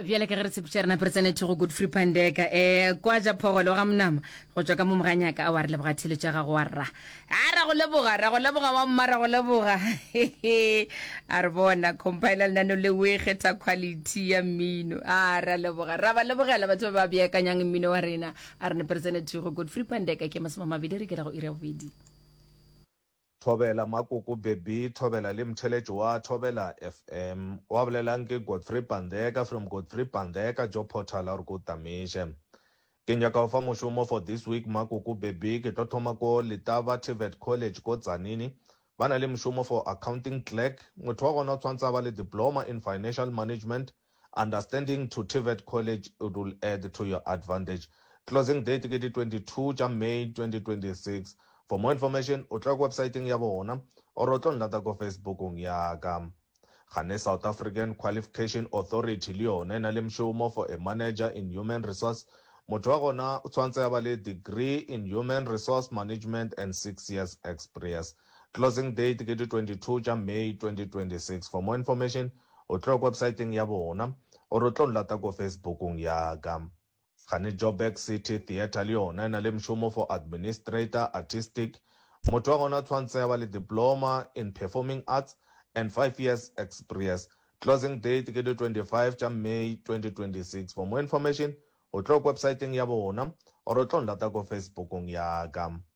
bjale ka ge re tshepetša rena pere tsenethe go good free pandeka um eh, kwa ja phogolo ga monama go tšwa ka mo moganyaka a wa re leboga thelo tša gago wa rra a ra go leboga ra go leboga wa mma ra go leboga a re bona compiler lenano le o e kgetha quality ya mmino a ra leboga ra ba lebogela batho ba ba beakanyang mmino wa rena a re ne pere tsenethe go good free pandeka ke masoma mabedi re ke ra go ira bobedi Thobela Makoko Bebby Thobela le Mtheletšo wa Thobela FM. Wa bolelang ke Godfrey Pandeka from Godfrey Pandeka jo Portal a re ke o tamiše. Ke nyaka go fa mošomo for this week Makoko Bebby ke tlo thoma ko Letaba TVET College ko Tzanini. Ba na le mošomo for Accounting Clerk. Motho wa gona o tshwantse a ba le Diploma in Financial Management. Understanding to TVET College it will add to your advantage. Closing date ke di 22 tša May 2026. For more information o tla ko websaeteng ya bona or o tlo nlata ko Facebookong ya ka. Gane South African Qualification Authority le yona e na le mšomo for a manager in human resource. Motho wa gona o tshwantse a ba le degree in human resource management and six years exprience. Closing date ke di 22 tša May 2026. For more information O tlo websaeteng ya bona, gore o tlo nlata ko Facebookong ya ka. Gane Joburg City Theatre le yona e na le mšomo for Administrator, Artistic. Motho wa gona o tshwantse a ba le Diploma in Performing Arts and five years expriece. Closing date ke di 25 tša May 2026. For more information, o tlo websaeteng ya bona, gore o tlo nlata ko Facebookong ya ka.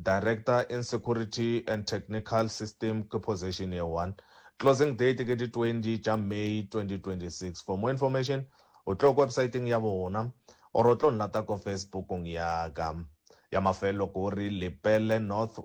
Director in Security and Technical System ke position ye one. Closing date ke di 20 tša May 2026. For more information, o tlo ko websiteng ya bona or o tlo nlata ko Facebookong ya ka. Ya mafelelo ke gore Lepelle North,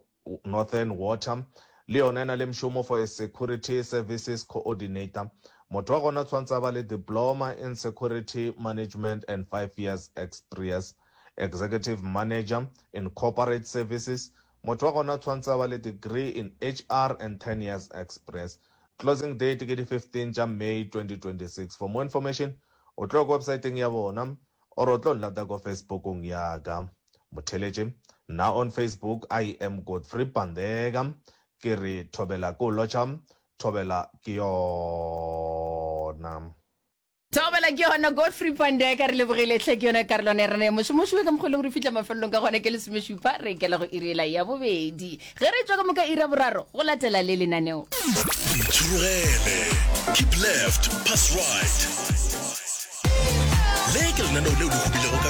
Northern Water, le yona e na le mšomo for a Security Services Coordinator. Motho wa gona o tshwanetse a ba le Diploma in Security Management and five years experience. Executive Manager in Corporate Services, Motho wa gona tshwantse a ba le degree in HR and ten years express. Closing date ke di 15 tša May 2026. For more information o tlo ya ko websaeteng ya bona or o tlo nlata ko Facebookong ya ka. Motheletše, Nna on Facebook I am Godfrey Pandeka. Ke re thobela ke o lotšha, thobela ke yona. Thobela ke yona Godfrey Pandeka re lebogile hle ke yona karolwana ya rena ya mošomošo ka mokgolong re fitlha mafelelong ka gona ke lesomešupa re ikela go irela ya bobedi ge re tswa ka moka ira boraro go latela le lenaneo Itšhologele, keep left, pass right. Le ke lenaneo leo le hubilego ka